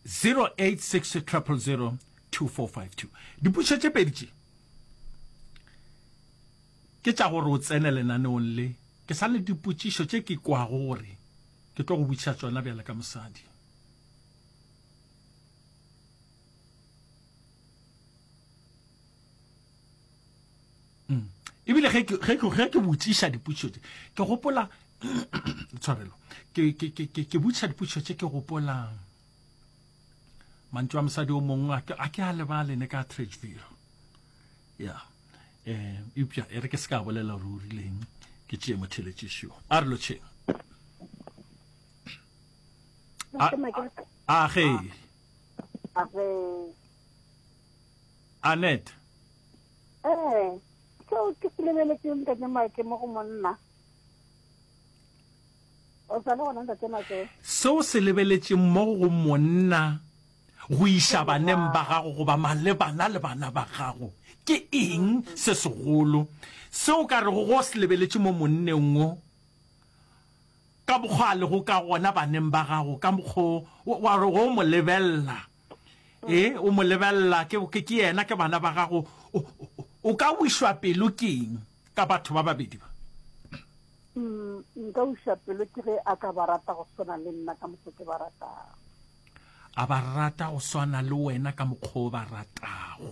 0860002452 dipušo tše pedi tše ke tša gore o tsene lenaneong le ke sa le dipotšišo tše ke kwago gore ke tlo go botšiša tsona bjale ka mosadi mm. ebile ge ke botšiša dipotšišo tse ke gopola tshwarelo ke botšiša dipotšišo tse ke gopola mantso a mosadi o mongwe a ke a lebale ne ka tradeville ya um eupša e re ke se ka bolela gore o rileng ke tšee motheletšišo a re lotšheng a ge anet ee seo ke se lebeletseng ntate make mo go monna o sa le gona ntate make seo se lebeletseng mo go monna go iša baneng ba gago goba malebana le bana ba gago ke eng se segolo seo ka rego go se lebeletše mo monneng o ka mokgwa a lego ka gona baneng ba gago, ka mokgwa wo, wa re o mo lebelela, e, o mo lebelela, ke, ke, ke yena, ke bana ba gago, o, o, o ka wešwa pelo ke'ng ka batho ba babedi ba? Mm, nka wešwa pelo ke ge a ka ba rata go swana le nna ka mokgwa ke ba ratago. A ba rata go swana le wena ka mokgwa o ba ratago.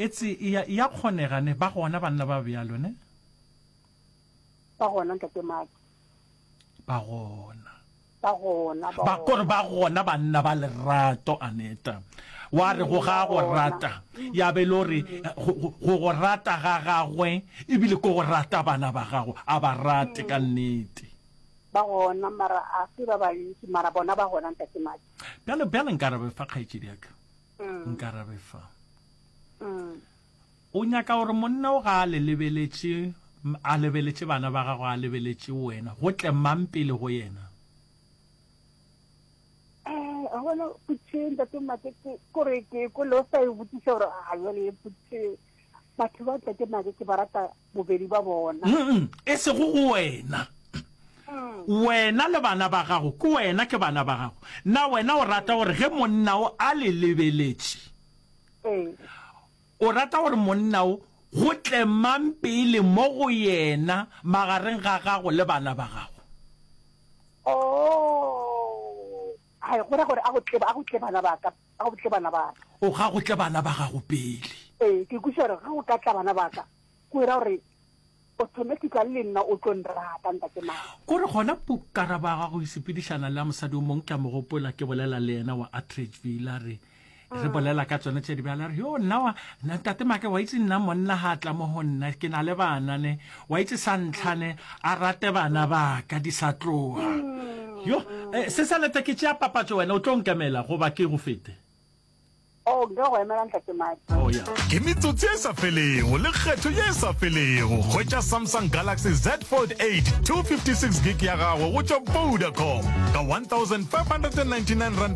Etse ea, ea kgonega, ne? Ba gona banna ba bjalo, ne? Ba gona, Ntate Mark. Ba gona. Ba gona, ba Ba, kore ba gona banna ba lerato, Aneta. Wa re, go ga go rata. Ya be e le gore, go, go, go go rata ga Gagwe, ebile ke go rata bana ba Gago, a ba rate ka nnete. Ba gona, mara a se ba bantši, mara bona ba gona, Ntate Mark. Bjale, bjale nka re fa kgaetšediaka. mm. nkarabe fa mm. o nyaka gore monna o ga a le lebeletše a lebeletše bana ba gago a lebeletše wena go tle mang pele go yena eh, a bona putšeng tate mate kore ke ko le o sa e botsiša gore a jale e putšeng batho ba ntate nake ke ba rata bobedi ba bona mm e sego go wena mm. wena le bana ba gago ke wena ke bana ba gago na wena o rata gore ge monna o a le lebeletše ee. o rata gore monna o go tle mang pele mo go yena magareng ga gago le bana ba gago oh. Hai, go ra gore a go tle, a go tle bana ba ka, a go tle bana ba ka. O ga go tle bana ba gago pele. Ee, ke kwešiša gore ge go ka tla bana ba ka, go ra gore automatically le nna o tlo nrata, Ntate Maka. Ko re gona Pu, ka araba ga go sepedišana le a mosadi o mongwe, ke a mo gopola ke bolela le yena, wa Atteridgeville, a re, re bolela ka tsone tse di bjale a re yo nna wa ntate make wa itse nna monna ga tla mo go nna ke na le bana ne wa itse sa ntlhane a rate bana ba ka di sa tloga yo eh, se sa leta ke tšea papatso wena o tlo nkemela goba ke go fete Oh, oh, ke metsotsi e sa felego le kgetho ye e sa felego hwetša samsung galaxy z fold 8 256 gig ya gago go tšwa vodacom ka 1599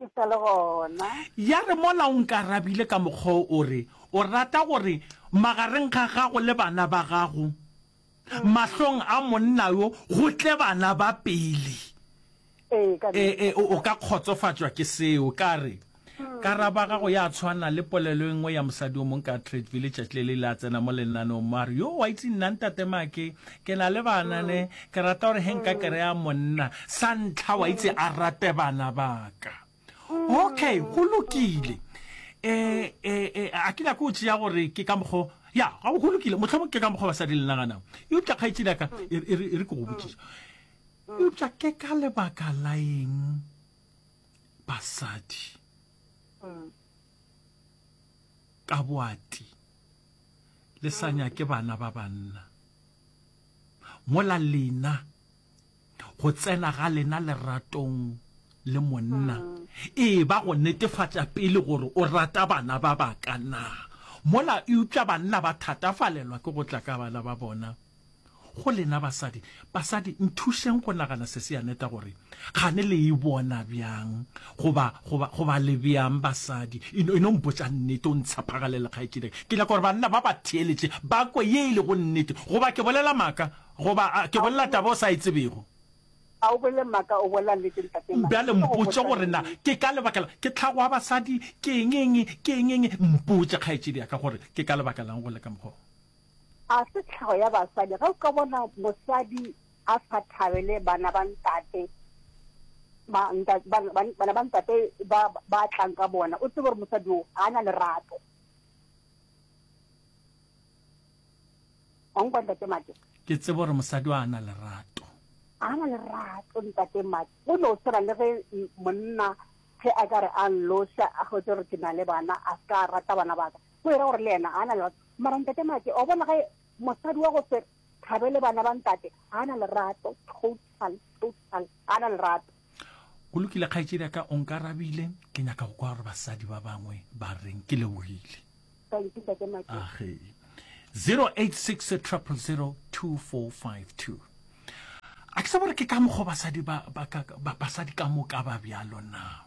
Ke sa le gona. Ya re, Mola o nkarabile ka mokgwa o, o re, O rata gore magareng ga gago le bana ba gago, mahlong a monna yo, go tle bana ba pele. Ee, ka E, nnete. e, o o ka kgotsofatšwa ke seo. Ka re, Karabo ya gago ya tshwana le polelo e nngwe ya mosadi yo mongwe ka Tretville letšatši le le ile a tsena mo lenaneong, mo a re, Yoo, wa itse nna, Ntate Mackey, ke na le bana, ne, Ke rata gore he nka kereya monna sa ntlha wa itse a rate bana baka. Okay, go lokile. E, e, e, a ke nyako tšeya gore ke ka mokgo ya ga go lokile motlhomong ke ka mokgwa basadi le naganang eupša kgaetšedi aka e, e, e re ke go botšiša eupša ke ka lebaka la eng basadi ka boati le sa nyake bana ba banna mola lena go tsena ga lena leratong le monna e ba go netefatša pele gore o rata bana ba baka na mola eupša banna ba thatafalelwa ke go tla ka bana ba bona Go lena basadi, basadi, nthušeng go nagana se se ya neta gore kgane le e bona bjang goba, goba, goba le bjang basadi. E no, e no mpotša nnete, o ntshepagalele kgaetšedika. Ke nyaka gore banna ba ba theeletše ba kwe ye e lego nnete. Goba ke bolela maaka? Goba a, ke bolela taba o sa e tsebego? A o bolele maaka, o bolela nnete, Ntate Mike. Bjale mpotše gore na ke ka lebaka la ke tlhago ya basadi, ke eng, eng, ke eng, eng. Mpotše, kgaetšedi ya ka, gore ke ka lebaka la'ng go le ka mokgwa wo. A se tlhago ya basadi ge o ka bona mosadi a sa thabele bana ba ntate, ba nta, ba, ba, bana ba ntate ba, ba tlang ka bona, o tsebe gore mosadi o ga a na lerato. Wa nkwa ntate Mate? Ke tsebe gore mosadi o a na lerato. A na lerato ntate Mate. O no swana le ge m- monna ge a ka re a nloša a hwetše gore ke na le bana a se ka rata bana ba ka. Go e ra gore le yena a na lerato. Mara ntate Make, wa bona ge mosadi wa go se thabele bana ba ntate, ga na lerato, total, total, ga na lerato. Go lokile kgaetšedi ya ka o nkarabile ke nyaka go kwa gore basadi ba bangwe ba reng ke lebogile Thank you, ntate Make. age 086 000 2452 a ke sa bore ke ka mokgwa basadi ba, ba, ka- ba, basadi ka moka ba bjalo na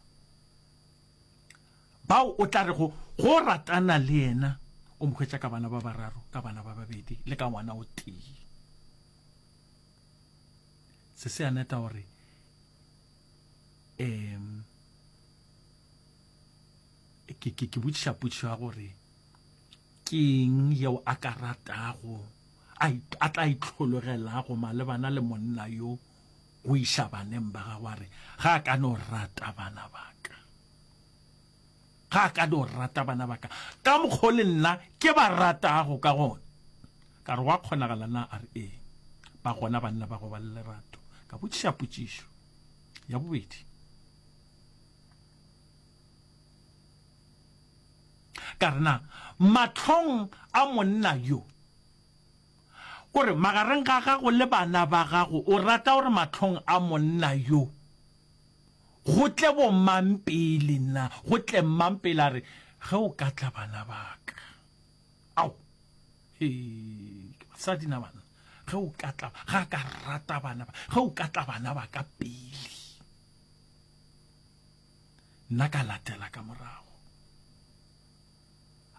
Bao o tla rego go ratana le yena o mo hwetša ka bana ba bararo, ka bana ba babedi le ka ngwana o tee. Seseaneta o re, um ke ke ke botšiša potšišo ya gore ke eng yeo a ka ratago a tla itlhologelago malebana le monna yo O iša baneng ba gagwe a re, Ga a ka no rata bana ba ka. Ga a ka no rata bana ba ka ka mokgwa o le nna ke ba ratago ka gona. Ka re, Gwa kgonagala na? A re, Ee. Ba gona banna ba go ba le lerato? Ka botšiša potšišo ya bobedi. Ka re, Na mahlong a monna yo? O re, Magareng ga gago le bana ba gago o rata gore mahlong a monna yo go tle bomang pele nna, go tle mmang pele? A re, Ge o ka tla bana ba ka. Ao! He! Ke basadi na banna. Ge o ka tla, ga a ka rata bana ba, ge o ka tla bana ba ka pele, nna ka latela ka morago.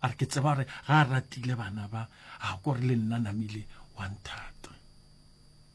a re ke tseba gore ga a ratile bana ba a ko re le nna namile wa nthata